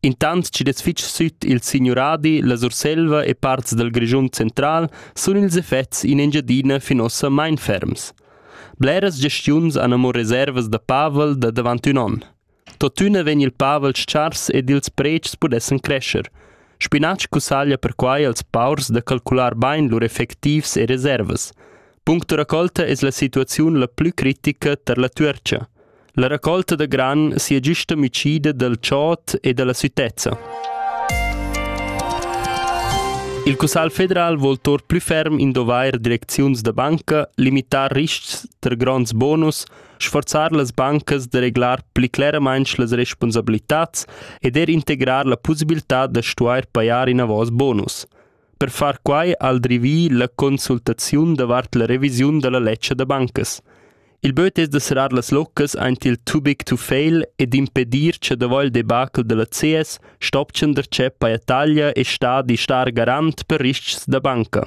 Intant chi'd es fich süt il signuradi, la Surselva e parts dal Grischun central sun ils effets in Engiadina fin uossa main ferms. Bleras gestiuns han amo reservas da pavel da davant ün on. Tuottüna vegn il pavel s-chars ed ils predschs pudessan crescer. Spinatsch cussaglia perquai als paurs da calcular bain lur effectivs e reservas. Punct da raccolta es la situaziun la plü critica tar la Tuercha. La raccolta da gran sia giusta amicida dal chod e dalla sütezza. Il Cussagl federal vol tor plü ferm indovair direcziuns da banca, limitar riscs ter gronds bonus, sforzar las bancas da reglar pli cleramaint las responsabilitats ed er integrar la pussibiltà da stuair pajar inavos bonus. Per far quai ha el drivì la consultaziun davart la revisiun da la ledscha da bancas. Il böt es da serrar las loccas aint il too big to fail ed impedir cha davo il debacle da la CS stopchan darcheu paja taglia e stadi star garant per ris-chs da banca.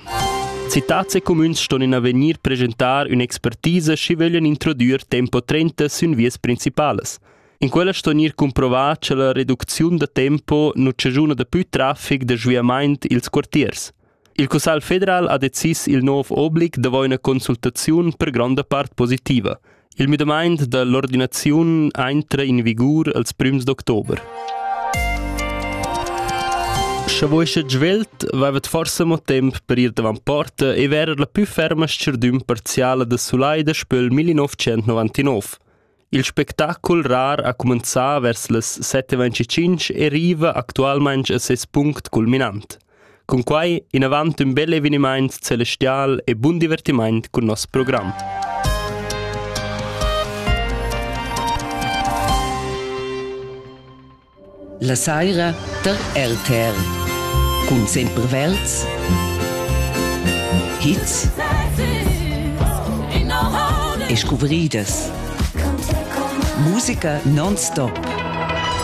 Citats e cumüns ston in avegnir presentar ün'expertisa schi vöglian introdüer tempo 30 sün vias principalas. In quella sto gnir cumprovà cha la reducziun da tempo nu chaschuna dapü trafic da sviamaint i'ls quartiers. Il Cussagl federal ha decis il nouv oblig davo üna consultaziun per gronda part positiva. Il müdamaint da l'ordinaziun aintra in vigur als prüms d'october. Sche voi sche svelt, vaivat forse mo temp per ir davant porta e verer la pü ferma s-cherdüm parziala da Sulai da Spöl 1999. Il spectacul rar ha cumenzà vers las set e ventgatg e riva actualmain a ses punct culminant. Cunquai inavant ün bel evenimaint celestial e bun divertimaint cun nos program. La saira tar RTR cun Sempervelds hits e scuvridas musica non-stop